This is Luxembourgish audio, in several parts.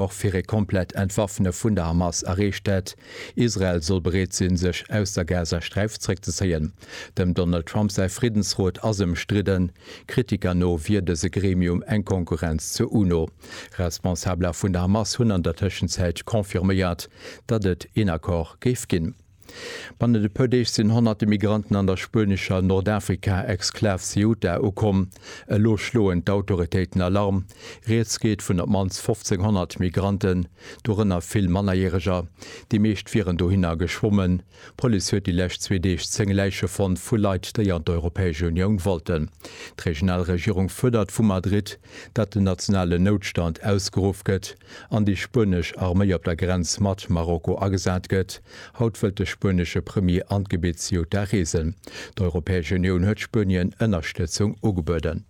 och fir e komplett Entwaffne vun der Hamas erreecht hätt. Israel soll bereet sinn, sech aus der Gazasträif zréckzezéien. Dem Donald Trump säi Friddensrot ass ëmstridden. Kritiker no wier dëse Gremium eng Konkurrenz zur UNO. Responsabeler vun der Hamas hunn an der Tëschenzäit confirméiert, datt et een Accord géif ginn. Bannent e puer Deeg sinn honnerte Migranten an der spuenescher Nordafrika-Exklav Ceuta ukomm. Elo schloen d'Autoritéiten Alarm. Rieds geet vun op d'mannst 1.500 Migranten, dorënner vill Mannerjäreger. Déi meescht wieren dohinner geschwommen. D'Police huet déi lescht zwee Deeg zéng Läiche fonnt vu Leit, déi an d'Europäesch Unioun wollten. D'regional Regierung fuerdert vu Madrid, datt den nationalen Noutstand ausgeruff gëtt. an déi spuenesch Arméi op der Grenz mat Marokko agesat gëtt. Haut wëllt de spuenesche Premier an d'Gebitt Ceuta reesen. D'Europäesch Unioun huet Spuenien Ënnerstëtzung ugebueden.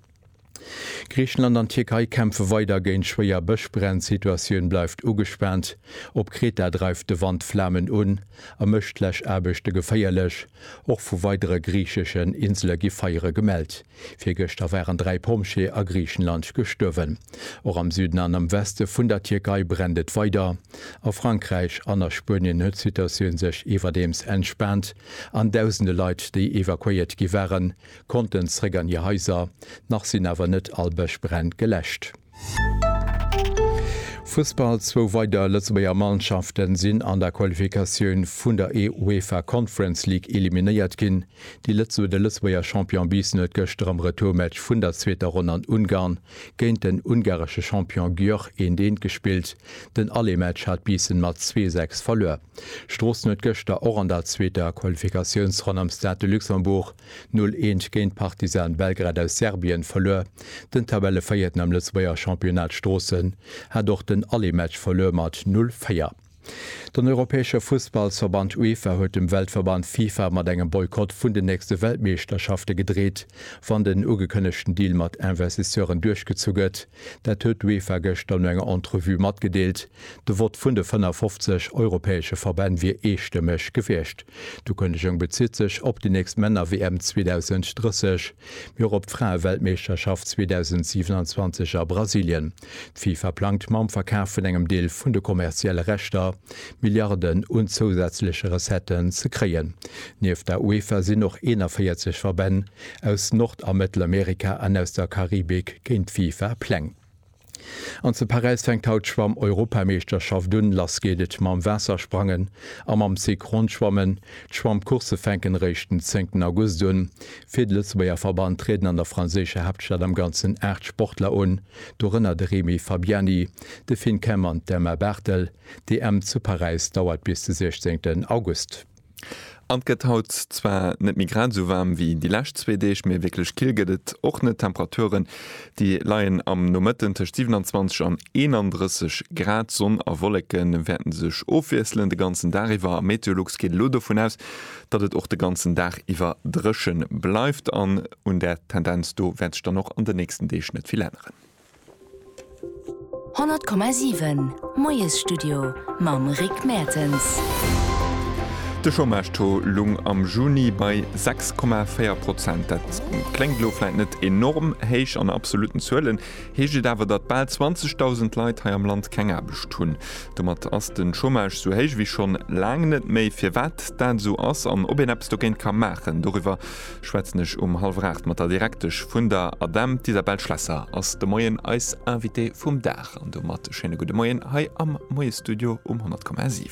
Griichenland an d'Tierkei kämpfe weider géint schwéier Bëschbränn, d'Situatioun bleift ugespaant. Op Kreta dreift de Wand Flamen un a mécht d'Läschaarbechte geféierlech. Och vu weidere griicheschen Insele gi Feiere gemellt. Virgëschter waren dräi Pompjeeë a Griichenland gestuerwen. Och am Süden an am Weste vun der Tierkei brennt et weider. A Frankräich an a Spuenien huet d'Situatioun sech iwwerdeems entspaant an dausende Leit, déi evakuéiert gi waren, konnten zeréck an hir Haiser. Nach sinn awer net all Bëschbränn geläscht. Fussball, Zwou weider Lëtzebuerger Mannschafte sinn an der Qualifikatioun vun der UEFA Conference League eliminéiert ginn. De Lëtzebuerger Champion Biissen huet gëschter am Retourmatch vun der zweeter Ronn an Ungarn géint den ungaresche Champion Győr 1, 1 gespillt. Den Allé-Match hat Biissen mat zwee, sechs verluer. Stroossen huet gëschter och an der zweeter Qualifikatiounsronn am Stade de Luxembourg 0 Eent géint Partizan Belgrad aus Serbien verluer. Den Tabellevéierten am Lëtzebuerger Championnat Stroossen hat och den Allematch verluer mat 0 Véier. Den europäesche Fussballsverband UEFA huet dem Weltverband FIFA mat engem Boykott vun den nächste Weltmeeschterschafte gedreet, wann den ugekënnegten Deal mat Investisseuren duerchgezu gëtt. Dat huet d'UEFA gëschter no enger Entrevue matgedeelt. De Vott vun de 55 europäesche Verbänn wier eestëmmeg gewiescht. D'Ukënnegung bezitt sech op déi nächst Männer-WM 2030, mee och op d'Fraeweltmeeschterschaft 2027 a Brasilien. D'FIFA plangt mam Verkaf vun engem Deel vun de kommerzielle Rechter, Milliarden un zousätzleche Recetten ze kréien. Nieft der UEFA sinn och 41 Verbänn aus Nord a Mëttelamerika an aus der Karibik géint d'FIFA Pläng. An zu Paräis fänkt haut d'Schwamm-Europameeschterschaft un. Lass geet et mam Waassersprangen a mam Synchronschwammen. D'Schwammcoursse fänken eréischt den 10 August un. Fir de Lëtzebuerger Verband trieden an der franséischer Haaptstad am Ganzen 8 Sportler un, dorënner de Remy Fabiani, de Finn Kemp an d'Emma Barthel. D'EM zu Paräis dauert bis de 16 August. An 't gëtt haut zwar net méi grad esou waarm wéi déi lescht zwee Deeg, mee wierklech kill gëtt et och net. Temperaturen déi leien am Nomëtten tëscht 27 an 31 Grad. Sonn a Wolleke wäerte sech ofwiesselen de ganzen Dag iwwer. A Meteolux geet elo dovun aus, datt et och de ganzen Dag iwwer dréche bleift. An un där Tendenz do wäert sech dann och an de nächsten Deeg net vill änneren. 100,7 Moiesstudio mam Rick Mertens. De Chômage-Taux lung am Juni bei 6,4 Prozent. Dat kléngt elo vläit net enorm héich, an absolutten Zuelen heescht et awer, datt bal 20.000 Leit hei am Land keng Aarbecht hunn. Domat ass de Chômage sou héich wéi schonn laang net méi. Firwat dat esou ass an ob een eppes dogéint ka maachen, doriwwer schwätzen ech um hallwer 8 mat der Direktesch vun der ADEM, d'Isabelle Schlesser ass de Moien eis Invitée vum Dag. An domat e schéine gudde Moien hei am Moie-Studio um 100,7.